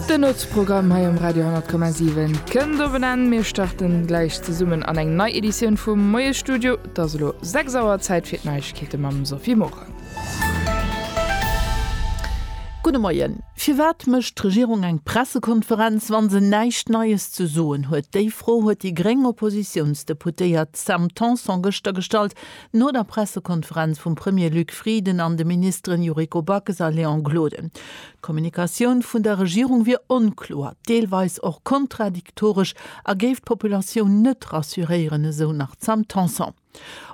Den Nuetsprogramm hei um Radio 10,7 kënnt op en Enn. Mir starten gläich zesummen an eng nei Editioun vum Moiesstudio. Et ass elo 6 Auer, Zäit fir d'Neiegkeete mam Sophie Morang. Gudde Moien. Firwat mécht d'Regierung eng Pressekonferenz, wa se näischt Neies ze soen huet? Déi Fro huet déi gréng Oppositiounsdeputéiert Sam Tanson gëschter gestallt, No der Pressekonferenz vum Premier Luc Frieden an de Ministeren Yuriko Backes a Léon Gloden. D'Kommunikatioun vun der Regierung wier onkloer, deelweis och kontradiktoresch a géif d'Populatioun net rassuréieren, esou nach d'Sam Tanson.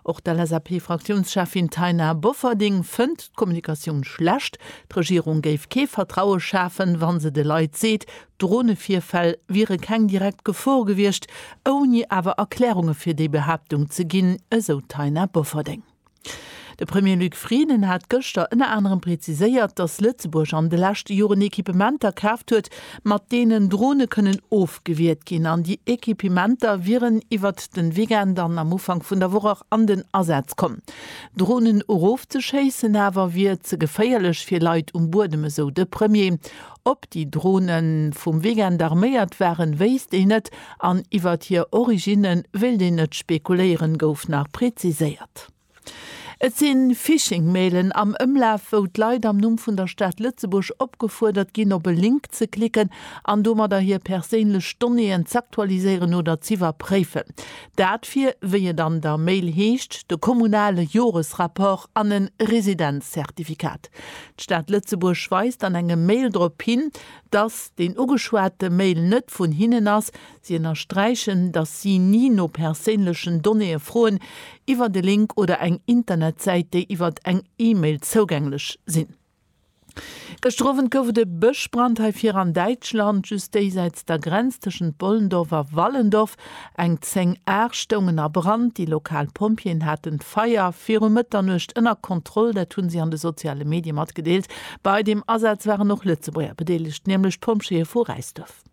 Och d'LSAP-Fraktiounscheffin Taina Bofferding fënnt d'Kommunikatioun schlecht. D'Regierung géif kee Vertraue schafen, wa se de Leit seet, Dronevirfäll wiere keng direkt Gefor gewiescht, ouni awer Erklärunge fir déi Behaaptung ze ginn, esou d'Taina Bofferding. De Premier Luc Frieden hat gëschter ënner anerem preziséiert, datt Lëtzebuerg an de leschte Joren Equipementer kaaft huet, mat deenen Drone kënnen ofgewiert ginn an déi Equipementer wieren iwwert de Weekend an am Ufank vun der Woch an den Asaz komm. Dronen erofzeschéissen awer wier ze geféierlech fir Leit um Buedem, esou de Premier. Ob déi Drone vum Weekend arméiert waren, wéisst een net an iwwert hir Originne wéilt een net spekuléieren, gouf nach preziséiert. Et si Phishing-Mailen am Ëmlaf, wou d'Leit am Numm vun der Stad Lëtzebuerg opgefuerdert ginn, op e Link ze klicken an domadder hir perséinlech Donnéeën z'aktualiséieren oder z'iwwerpréifen. Dat fir, wéi et an der Mail heescht, de kommunale Joresrapport an e Residenz-Zertifikat. D'Stad Lëtzebuerg weist an engem Mail drop hin, dass den ugeschwate Mail net vun hinnen ass. Si ënnersträichen, dass si ni no perséinlechen Donnéeë froen iwwert e Link oder eng Internetsäit, déi iwwert eng E-Mail zougänglech sinn. Gëschter Owend gouf et e Bëschbrand hei vir an Däitschland, just déisäits der Grenz tëschent Bollendorf a Wallendorf. Eng 10 Aer stoungen a Brand. Déi lokal Pompjeeën haten d'Feier viru Mëtternuecht ënner Kontroll. Dat hu si an de soziale Medie matgedeelt. Bei dem Asaz waren och Lëtzebuerger bedeelegt, nämlech d'Pompjeeë vu Räisduerf.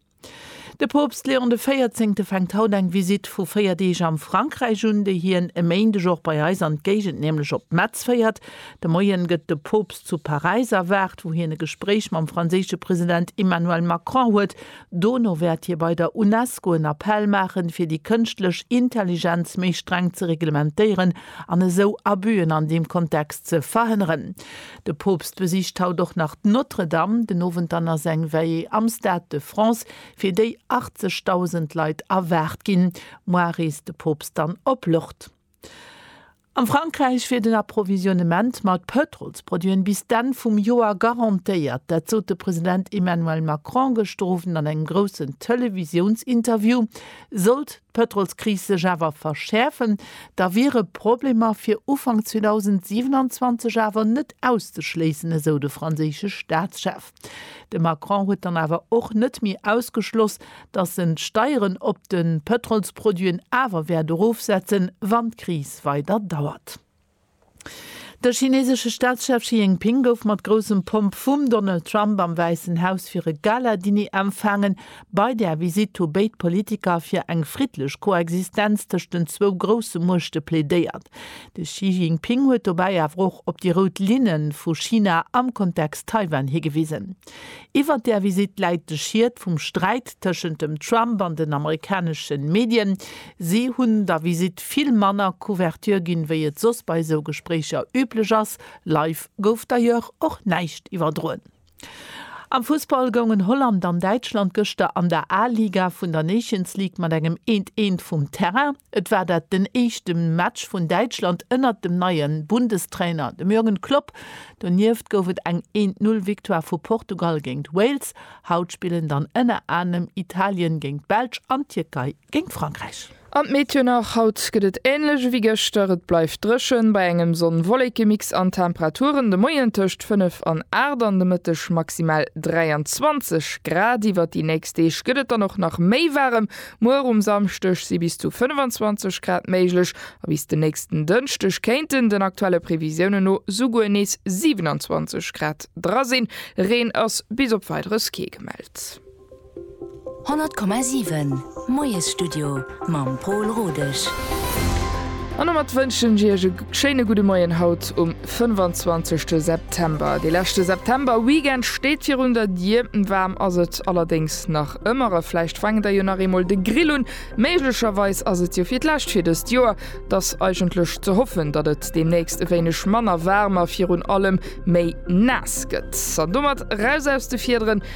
De Poopst Leon de Véierzéngte fänkt haut eng Visitt vu 4 Deeg am Frankräich un, déi hien e Méindeg och bei eis an d'Géigend, nämlech op Metz féiert. De Moien gëtt de Poopst zu Paräis erwaart, wou hien e Gespréich mam franséische President Emmanuel Macron huet. Dono wäert hie bei der Unesco en Appell maachen, fir déi kënschtlech Intelligenz méi streng ze reglementéieren an esou Abüen an deem Kontext ze verhënneren. De Poopst besicht haut och nach d'Notre-Dame, den Owend dann ass eng Veillée am Stade de France, fir déi 80.000 Leit erwaart ginn. Muar reest de Poopst dann op Lourdes. Am Frankräich wier den Approvisionnement mat Pëtrolsproduiten bis d'Enn vum Joer garantéiert. Dat sot de President Emmanuel Macron gëschter Owend an engem groussen Televisiounsinterview. Sollt d'Pëtrolskris sech awer verschäerfen, da wiere Problemer fir Ufank 2027 awer net auszeschléissen, esou de franséische Staatschef. De Macron huet dann awer och net méi ausgeschloss, datt en d'Steieren op de Pëtrolsproduiten awer wäert erofsetzen, wann d'Kris weider dauert. De chinesesche Staatschef Xi Jinping gouf mat groussem Pomp vum Donald Trump am Wäissen Haus fir e Gala-Diner empfaangen, Bei där Visitt hu béid Politiker fir eng friddlech Koexistenz tëscht den zwou grousse Muechte plädéiert. De Xi Jinping huet dobäi awer och op déi rout Linne vu China am Kontext Taiwan higewisen. Iwwert där Visitt läit de Schiet vum Sträit tëschent dem Trump an den amerikanesche Medien. Si hunn der Visitt vill manner Couverture ginn, wéi et soss bei esou Gespréicher üblech ass. Live gouf d'ailleurs och näischt iwwerdroen. Am Fussball goungen Holland an Däitschland gëschter an der A-Liga vun der Nations League mat engem 1, 1 vum Terrain. Et war dat den éischte Match vun Däitschland ënnert dem neie Bundestrainer, dem Jürgen Klopp. Donieft gouf et eng 1, 0 Victoire vu Portugal géint Wales. Haut spillen dann ënner anerem Italien géint d'Belsch an d'Tierkei. géint Frankräich. An d'Meteo nach, Haut gëtt et änlech ewéi gëschter, et bleift dréchen bei engem Sonn-Wolleke-Mix an Temperaturen de Moien tëscht 5 an 8 an de Mëtteg maximal 23 Grad. Iwwert déi nächst Deeg gëtt et dann och nach méi waarem, muer um Samschdeg si bis zu 25 Grad méiglech a bis de nächsten Dënschdeg kéinten den aktuelle Previsiounen no souguer nees 27 Grad dra sinn. Reen ass bis op Weideres kee gemellt. 100,7 Moiesstudio mam Pol Rodesch. An domat wënschen ech Iech e schéine gudde Moien haut um 25 September. De leschte September-Weekend steet virun der Dier. Waarm ass et allerdéngs nach ëmmer a vläicht faangen der jo nach eemol de Grill un. Méiglecherweis ass et jo fir d'lescht fir dëst Joer. Et ass eigentlech ze hoffen, datt et deemnächst e wéineg manner waarm a virun allem méi naass gëtt. An domat raus aus de Fiederen.